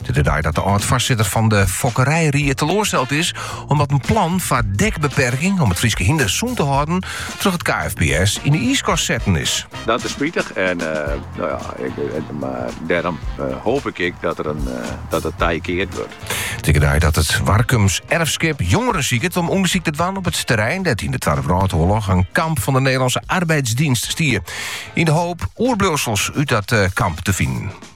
It is de dei dat de âld-foarsitter fan de fokkerijried teloarsteld is omdat in plan foar dekbeperking om it Fryske hynder sûn te hâlden troch het KFPS yn de iiskast setten is. Dat is spitich en eh, nou ja, ik, eh, mar dêrom eh, hoop ik ik dat, der in, dat it tij keard wurdt. It is ek de dei dat it Warkums Erfskip jongeren siket om ûndersyk te dwaan op it terrein dêr't yn de Twadde Wrâldoarloch in kamp fan de Nederlandse Arbeidsdienst stie. Yn de hoop oerbliuwsels út dat kamp te finen.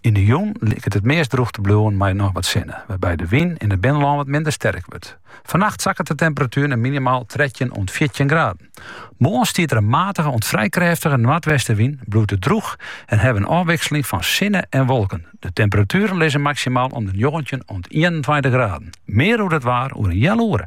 Yn de jûn liket it meast drûch te bliuwen mei noch wat sinne, wêrby't de wyn yn it binnenlân wat minder sterk wurdt. Fannacht sakket de temperatuer nei minimaal trettjin oant fjirtjin graden. Moarn stiet der in matige oant frij krêftige noardwestenwyn, bliuwt it drûch en hawwe we in ôfwikseling fan sinne en wolken. De temperatueren lizze maksimaal om de njoggentjin oant ienentweintich graden. Mear oer it waar oer in healoere.